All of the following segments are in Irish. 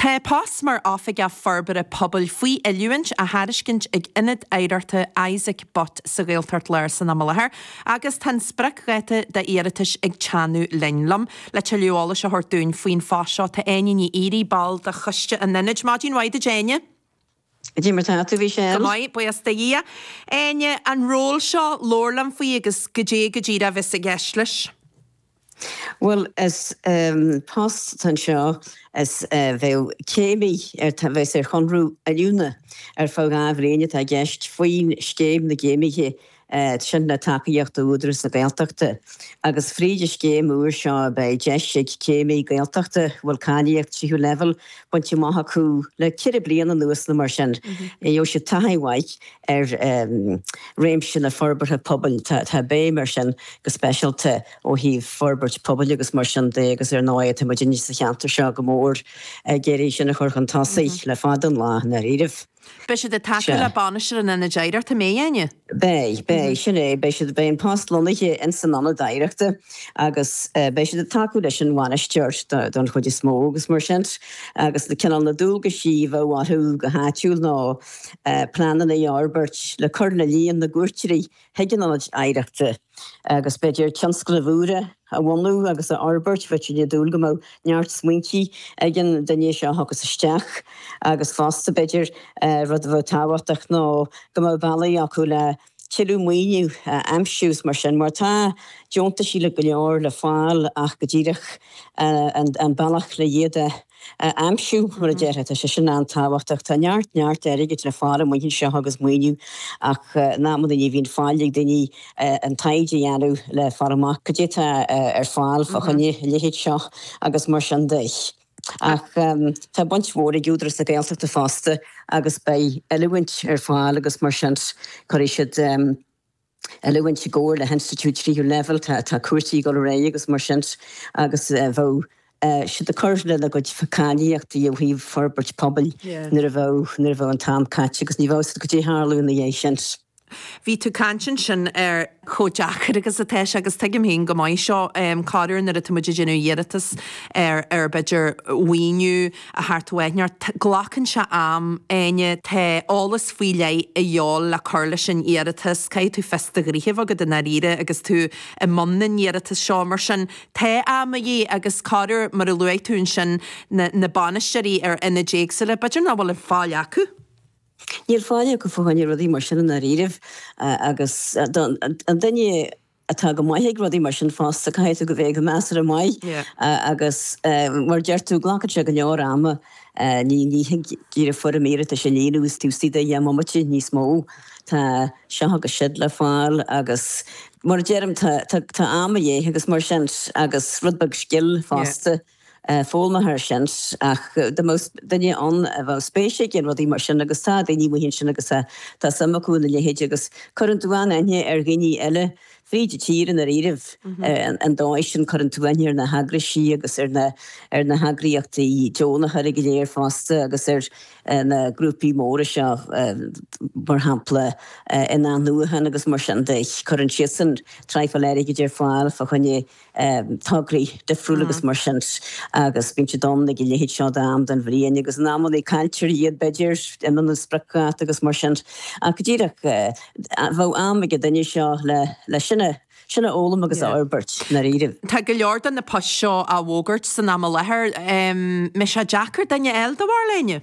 Tá post mar Oifigeach Forbartha Pobail faoi oiliúint á thairiscint ag Ionad Oidhreachta Isaac Butt sa Ghaeltacht Láir san am i láthair agus tá an spriocdháta d'iarratais ag teannadh linn. liom. Le tuilleadh eolais a thabhairt dúinn faoin phost seo, tá Áine Ní Fhíoraí, ball de Choiste an Ionaid. Maidin mhaith duit, Áine. Cad é mar tá tú? Buíochas do Dhia. Áine, an ról seo, labhair liom faoi agus goidé go díreach a bheas i gceist leis? Bhuel, is post atá anseo is bheadh céimí a bheas ar chonradh oiliúna ar feadh dhá bhliain atá i gceist faoin scéim na gcéimithe sin le tacaíocht ó Údarás na Gaeltachta, agus fríd an scéim úr seo beidh deis ag céimí Gaeltachta a bhfuil cáilíocht tríú leibhéal bainte amach acu le ceithre bliana anuas nó mar sin, gheobhaidh siad taithí mhaith ar réimse na forbartha pobail. Tá béim ar sin go speisialta ó thaobh forbairt pobail agus mar sin de agus ar ndóigh tá muidinne sa cheantar seo go mór ag iarraidh sin a chur chun tosaigh le fada an lá i ndáiríribh. Beidh siad ag tacú le Bainisteoir an Ionaid Oidhreachta, an mbeidh, a Áine? Beidh, beidh, sin é, beidh siad, beidh an post lonnaithe in san Ionad Oidhreachta agus beidh siad ag tacú leis an Bhainisteoir don chuid is mó agus mar sin agus na cineál na dualgaisí a bheadh orthu go háithrid ná pleananna a fhorbairt le cur le líon na gcuairteoirí chuig an Ionad Oidhreachta agus, b'fhéidir, tionscnaimh úra a bhunú agus a fhorbairt, bheadh muid ag dúil go mbeadh neart smaointí ag an duine seo a thiocfas isteach agus fosta, b'fhéidir, rud a bheadh tábhachtach ná go mbeadh bealaí acu le tuilleadh maoiniú a aimsiú is mar sin, mar tá deontaisí le go leor le fáil ach go díreach an bealach le iad a a aimsiú, mar a déarfá. Tá sé sin an-tábhachtach. Tá neart, neart airgid le fáil amuigh anseo agus maoiniú ach in amanna ní bhíonn faill ag daoine an taighde a dhéanamh le fáil amach cad é atá ar fáil fá choinne a leithéid seo agus mar sin de. Ach tá baint mhór ag Údarás na Gaeltachta fosta agus beidh oiliúint ar fáil agus mar sin cuirfidh siad, oiliúint i gcomhar le hinstitiúid tríú leibhéal, tá cúrsaí ag dul ar aghaidh agus mar sin agus bheadh siad ag cur lena gcuid cáilíochtaí ó thaobh forbairt pobail nuair a bheadh, nuair a bheadh an t-am caite agus ní bheadh a fhios agat caidé a tharlódh ina dhiaidh sin. Bhí tú ag caint ansin ar chomh deacair agus atá sé agus tuigim féin go maith seo, corruair nuair atá muid ag déanamh iarratas ar ar b'fhéidir mhaoiniú, atá ar fáil, tá neart. Glacann sé am a Áine, tá eolas faoi leith de dhíobháil le cur leis an iarratas. Caithfidh tú fios do ghnoithe a bheith agat i ndáiríre agus tú i mbun na n-iarratas seo. Mar sin, tá am de dhíth agus corruair, mar a luaigh tú ansin, na na bainisteoirí ar ionaid éagsúla, b'fhéidir nach bhfuil faill acu. Níl faill acu fá choinne rudaí mar sin i ndáiríribh agus don duine, atá go maith ag rudaí mar sin fosta, caithfidh tú a bheith go measartha maith agus mar a deir tú, glacann sé go leor ama, ní thig díreach foirm iarratais a líonadh taobh istigh de dheich mbomaite, níos mó, tá seo agus siúd le fáil agus mar a deirim, tá am a dhíth agus mar sin agus rud beag scil fosta. foghlaimthear sin ach dá mbeadh duine ann a bheadh spéis aige in rudaí mar sin agus tá daoine amuigh ansin agus tá suim acu ina leithéid agus cuireann tú an-aithne ar dhaoine eile fríd an tír i ndáiríribh an dóigh sin. Cuireann tú aithne ar na heagraisí agus ar na ar na heagraíochtaí deonacha go léir fosta agus ar na grúpaí móra seo mar shampla in athnuachan agus mar sin de. Cuireann siadsan traidhfil airgid ar fáil fá choinne tograí difriúla agus mar sin agus bíonn siad ann ag a leithéid seo d'am den bhliain agus in amannaí cailltear iad b'fhéidir, imeann an spriocdháta agus mar sin ach go díreach bheadh am ag an duine seo le sin a sin a fhoghlaim agus a fhorbairt i ndáiríribh. Tá go leor de na poist seo á bhfógairt san am i láthair. Mbeidh sé deacair duine a fháil, do bharúil féin?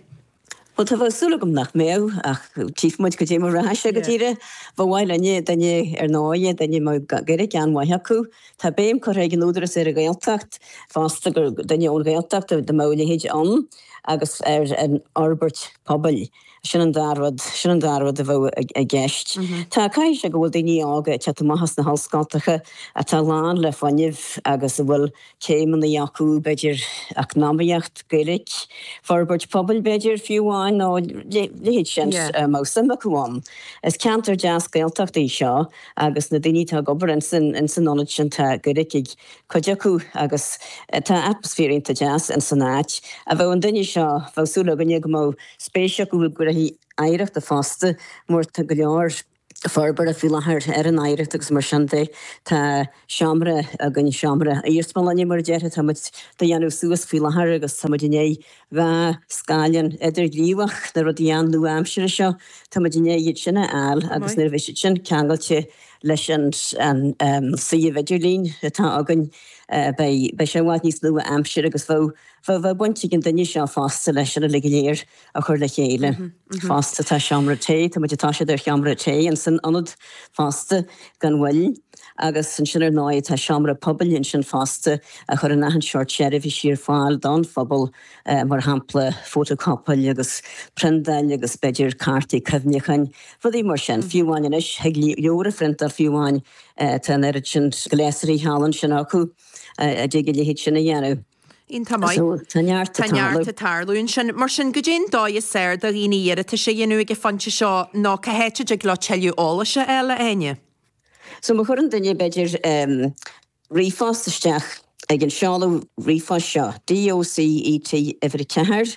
Bhuel, tá súil agam nach mbeadh, ach tchífidh muid cad é mar a rachaidh sé go díreach. Ba mhaith linn é, duine ar ndóigh é, duine a mbeadh Gaeilge an-mhaith acu. Tá béim curtha ag an Údaras ar an Ghaeltacht fosta, gur duine ón Ghaeltacht dá mbeadh a leithéid ann, agus ar an fhorbairt pobail. Sin an dá rud, sin an dá rud a bheadh i gceist. Tá, caithfidh sé go bhfuil daoine óga ag teacht amach as na hollscoltacha atá lán le fuinnimh agus a bhfuil céimeanna acu, b'fhéidir, eacnamaíocht, Gaeilge, forbairt pobail, b'fhéidir, fiú amháin, nó a leithéid sin, a mbeadh suim acu ann. Is ceantar deas Gaeltachta í seo agus na daoine atá ag obair ins an ionad sin, tá Gaeilge ag cuid acu agus tá atmaisféar iontach deas ins an áit. Bheadh an duine seo, bheadh súil againne go mbeadh spéis acu i gcúrsaí oidhreachta fosta mar tá go leor, forbartha faoi láthair ar an oidhreacht agus mar sin de tá seomra againn, seomra iarsmalainne mar a déarfá, tá muid dá dhéanamh suas faoi láthair agus tá muid i ndiaidh dhá scáileán idirghníomhach, na rudaí an-nua-aimseartha seo, tá muid i ndiaidh iad sin a fháil agus nuair a bheidh siad sin ceangailte leis an suíomh idirlín atá againn beidh sé i bhfad níos nua-aimseartha agus bheadh baint ag an duine seo fosta leis sin uilig go léir. a chur le chéile. Fosta tá seomra tae, tá muid ag toiseacht ar sheomra tae insan ionad fosta gan mhoill agus ansin ar ndóigh tá seomra pobail ansin fosta a chuireann achan seort seirbhísí ar fáil don phobal mar shampla fótachóipeáil agus priontáil agus b'fhéidir cártaí cuimhneacháin, rudaí mar sin. Fiú amháin anois thig leabhar a phriontáil fiú amháin, tá an oiread sin gléasraí thall ansin acu a dtig a leithéid sin a dhéanamh. Iontach maith. Tá neart ag tarlú ansin. Mar sin, goidé'n dóigh is fhearr do dhaoine iarratas a dhéanamh ag an phointe seo nó cá háit a dtig leo tuilleadh eolais a fháil, a Áine? So má chuireann duine, b'fhéidir, ríomhphost isteach ag an seoladh ríomhphoist seo, DOCET, Uimhir 4,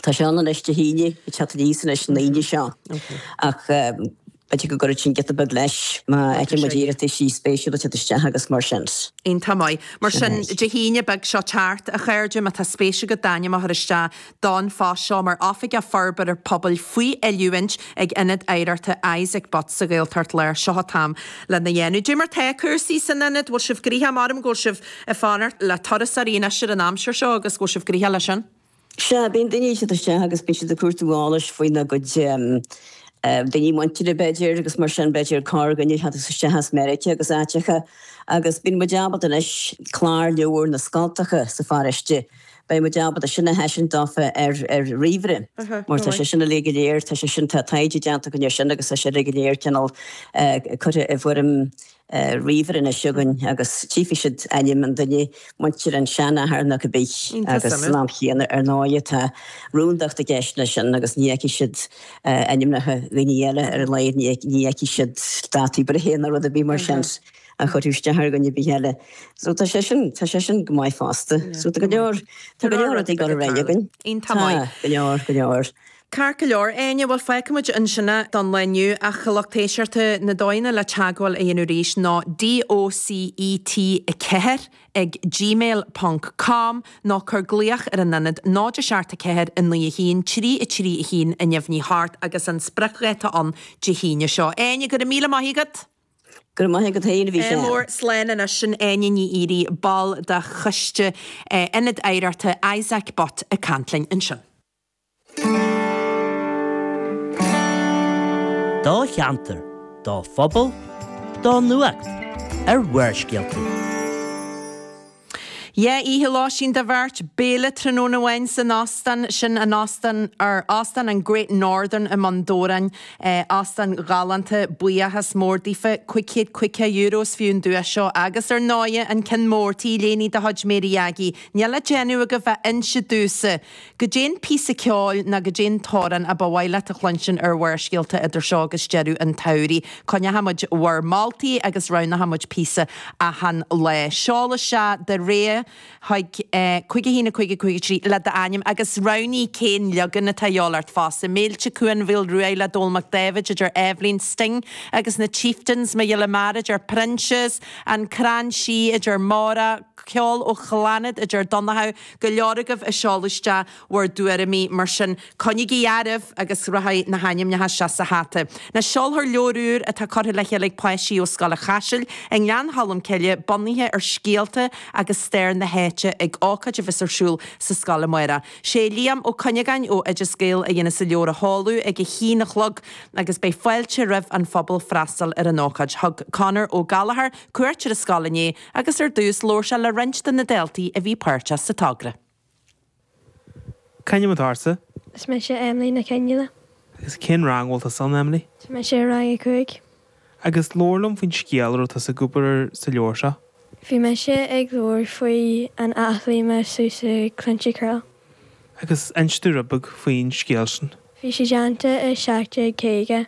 Tá sé ann anois, Dé hAoine, ag teacht aníos anois an Aoine seo, ach b'fhéidir go gcuirfidh sin giota beag leis má fhaigheann muid iarrataisí spéisiúla teacht isteach agus mar sin. Iontach maith. Mar sin, Dé hAoine, beag seo ag teacht, a chairde, má tá spéis agat d'ainm a chur isteach don phost seo mar Oifigeach Forbartha Pobail faoi oiliúint ag Ionad Oidhreachta Isaac Butt sa Ghaeltacht Láir. Seo an t-am lena dhéanamh. Goidé mar tá cúrsaí san Ionad, bhfuil sibh gnoitheach, measaim go bhfuil sibh ag fanacht le turasóirí in aistir an aimsir seo agus go bhfuil sibh gnoitheach leis sin. Sea, bíonn daoine ag teacht isteach agus bíonn siad ag cuartú eolais faoina gcuid daoine muinteartha, b'fhéidir, agus mar sin, b'fhéidir, cá againn ar tháinig tú isteach as Meiriceá agus áiteacha. Agus bíonn muid ábalta anois clárleabhair na scoltacha sa pharóiste, beidh muid ábalta sin a thaispeáint dófa ar ríomhaire, mar tá sé sin uilig go léir, tá sé sin, tá taighde déanta againn air sin agus tá sé uilig go léir cineál curtha i bhfoirm, ar ríomhaire anois againn agus tchífidh siad ainm an duine mhuinteartha, an seanathair nó cibé. Agus san am chéanna ar ndóighe tá rúndacht i gceist leis sin agus ní fheicfidh siad ainmneacha dhaoine eile, ar a laghad ní fheicfidh siad dátaí breithe nó rud ar bith mar sin a chuirfeadh isteach ar dhuine ar bith eile. So tá sé sin, tá sé sin go maith fosta. So tá go leor, tá go leor rudaí ag dul ar aghaidh againn. Tá go leor, go leor. Ceart go leor, Áine, bhuel, fágfaimid ansin é don lá inniu ach a lucht éisteachta na dóigheanna le teagmháil a dhéanamh arís ná DOCET4 ag gmail ponc com nó cuir glaoch ar an Ionad 0 7 4 9 1 3 3 1 0 8 agus an spriocdháta ann Dé hAoine seo. Áine, go raibh míle maith agat! Go raibh maith agat féin, a Mhícheál. mór, slán anois, sin Áine Ní Dhíoraí, ball de choiste Ionad Oidhreachta Isaac Butt, ag caint linn ansin. do cheantar, do phobal, do nuacht ar Bharrscéalta. Dhá oíche lóistín do bheirt, béile tráthnóna amháin san óstán, sin an óstán ar, Óstán an Great Northern i mBun Dobhráin. Óstán galánta, buíochas mór daofa. Cuig chéad caoga euro is fiú an duais seo. Agus ar ndóighe, an ceann mór, T-léine de chuid Mary Aggie. Níl le déanamh agaibh ach inse domhsa! Goidé'n píosa ceoil ná goidé'n t-amhrán a ba mhaith leat a chluinstin ar Bharrscéalta idir seo agus deireadh an tsamhraidh, coinneochaidh muid bhur moltaí agus roghnóchaidh muid píosa achan lá. Seol isteach do rogha chuig, eh, 515053 le d'ainm agus roghnaigh cén leagan atá a dhíobháil ort fosta, Méilte, Cuan Mhaoil Ruaidh le Dónall Mac Dáibhid a d'iarr Eibhlín, Sting agus na Chieftains, Mo Ghile Mear a d'iarr Proinsias, An Crann Sí a d'iarr Máire, ceol ó Chlannad, a deir Donnchadh, go leor agaibh ag seoladh isteach bhur dtuairimí, mar sin coinnigí oraibh agus rachaidh na hainmneacha seo sa hata. Now seolfar leabhar úr atá curtha le chéile ag páistí ó Scoil an Chaisil i nGleann Cholm Cille bunaithe ar scéalta agus stair na háite ag ócáid a bheas ar siúl sa scoil amáireach. Sé Liam Ó Cuinneagáin ó Oideas Gael a dhéanfas an leabhar a sheoladh ag a haon a chlog agus beidh fáilte roimh an phobal freastal ar an ócáid. Thug Conor Ó Gallchóir cuairt ar an scoil inné agus ar dtús labhair sé le roinnt de na daltaí a bhí páirteach sa togra. C'ainm atá ortsa? Is mise Emily Nic Fhionnghaile. Agus cén rang a bhfuil tusa ann, Emily? Tá mise i rang a cúig. Agus labhair liom faoin scéal a raibh tusa ag obair air sa leabhar seo. Bhí mise ag labhair faoi an áith lime suas i Cluainte Carraill. Agus inis domh rud beag faoin scéal sin. Bhí sí déanta i 1750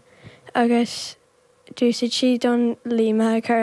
agus d'úsáid sí don lime a chur ar an.